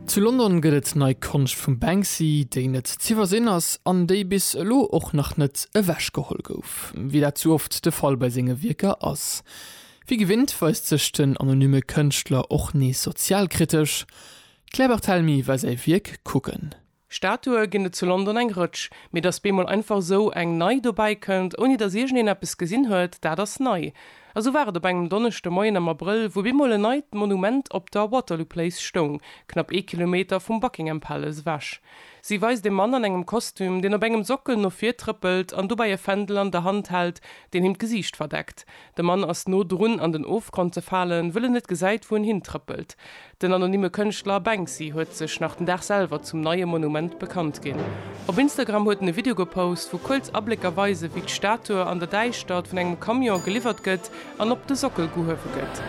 Zu London gëtt et nei Konscht vum Banksy, déi net z'iwwersinn ass an déi bis elo och nach net ewech geholl gouf, wéi dat sou oft de Fall bei senge Wierker ass. Wéi gewinnt weist sech den anonymme Kënschtler och nees sozialkritesch. D'Claire Barthelemy war säi Wierk kucken. Statue ginn et zu London eng Rëtsch, mee datt bemol einfach esou eng nei dobäi kënnt, ouni datt iergendeen eppes gesinn huet, dat ass nei. A sou war et op engem Donneschde Moien am Abrëll, wou bemol en neit Monument op der Waterloo Place stoung, knapp ee Kilometer vum Buckingham Palace ewech. Si weist e Mann an engem Kostüm, deen op engem Sockel no vir trëppelt an dobäi e Fändel an der Hand hält, deen him d'Gesiicht verdeckt. De Mann ass no drun an den Ofgrond ze falen, wëll en net gesäit, wou en hintrëppelt. Den anonymme Kënschtler Banksy huet sech nach den Dag selwer zum neie Monument bekannt ginn. Op Instagram huet en e Video gepost, wou kuerz Ablécker weisen, wéi d'Statue an der Däischtert vun engem Camion geliwwert gëtt an op de Sockel gehuewe gëtt.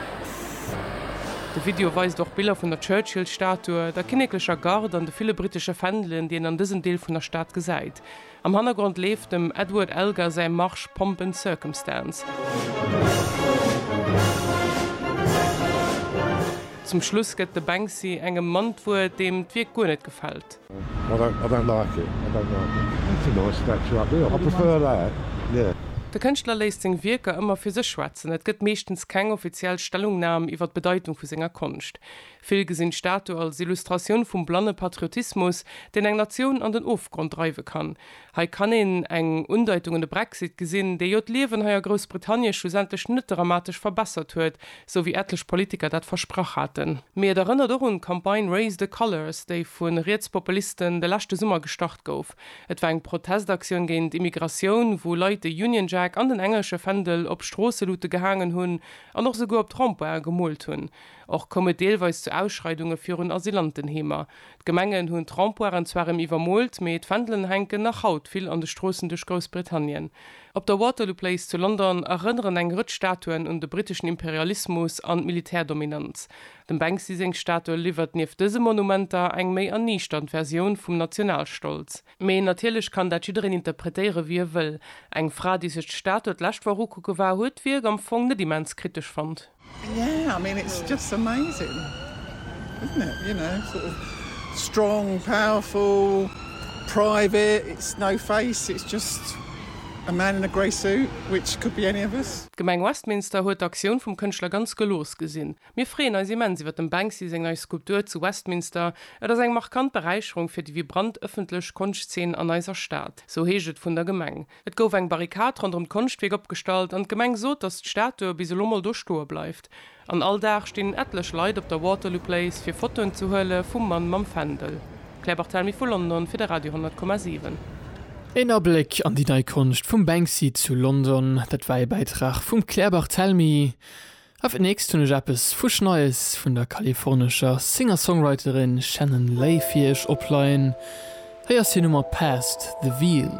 De Video weist och Biller vun der Churchill-Statue, der kinneklecher Garde an de ville brittesche Fändelen, déi een an dësem Deel vun der Stad gesäit. Am Hannergrond leeft dem Edward Elgar säi Marsch Pomp and Circumstance. Zum Schluss gëtt de Banksy engem Mann d'Wuert, deem d'Wierk guer net gefält. De Kënschtler léisst seng Wierker ëmmer fir sech schwätzen, et gëtt meeschtens keng offiziell Stellungnam iwwer d'Bedeitung vu senger Konscht. Vill gesinn d'Statu als Illustratioun vum blanne Patriotismus, deen eng Natioun an den Ofgrond dreiwe kann. Hei kann een eng Undeitung un de Brexit gesinn, dee jo d'Liewen hei a Groussbritannie schlussendlech net dramatesch verbessert huet, sou wéi etlech Politiker dat versprach haten. Mee et erënnert och un d'Campagne Raise the Colours, déi vu Rietspopulisten de leschte Summer gestart gouf. Et war eng Protestaktioun géint Immigratioun, wou Leit de Union Jack an den englesche Fändel op Stroosselute gehaangen hunn an och souguer op Trempoiren gemoolt hunn. Och koum et deelweis zu Ausschreidunge virun Asylantenheemer. D'Gemengen hunn d'Rempoiren zwar rem iwwermoolt, mee d'Fändelen hänken nach haut vill an de Stroossen duerch Groussbritannien. Op der Waterloo Place zu London erënneren eng Rëtsch Statuen un de briteschen Imperialismus an d'Militärdominanz. Dem Banksy seng Statue liwwert nieft dëse Monumenter eng méi erniichternd Versioun vum Nationalstolz. Mee natierlech kann dat jiddereen interpretéiere wéi e wëll. Eng Fra, déi sech d'Statue d'lescht Woch ukucke war, huet d'Wierk am Fong net immens kritesch fonnt. D'Gemeng Westminster huet d'Aktioun vum Kënschtler ganz gelooss gesinn. Mir freeën eis immens iwwer dem Banksy seng nei Skulptur zu Westminster. Et ass eng markant Beräicherung fir déi vibrant ëffentlech Konschtzeen an eiser Stad, sou heescht et vun der Gemeng. Et gouf eng Barrikad ronderëm d'Konschtwierk opgestallt an d'Gemeng sot, datt d'Statue bis elo mol do stoe bleift. An all Dag stinn etlech Leit op der Waterloo Place fir Fotoen ze huele vum Mann mam Fändel. Claire Barthelmy vu London fir de Radio 10,7. Een Abléck an déi nei Konscht vum Banksy zu London, dat war ee Bäitrag vum Claire Barthelmy. Auf den nächst hunn ech eppes fusch Neies vun der kalifornescher Singer-Songwriterin Shannon Lay fir iech opleien. Hei ass hir Nummer Past the Veil.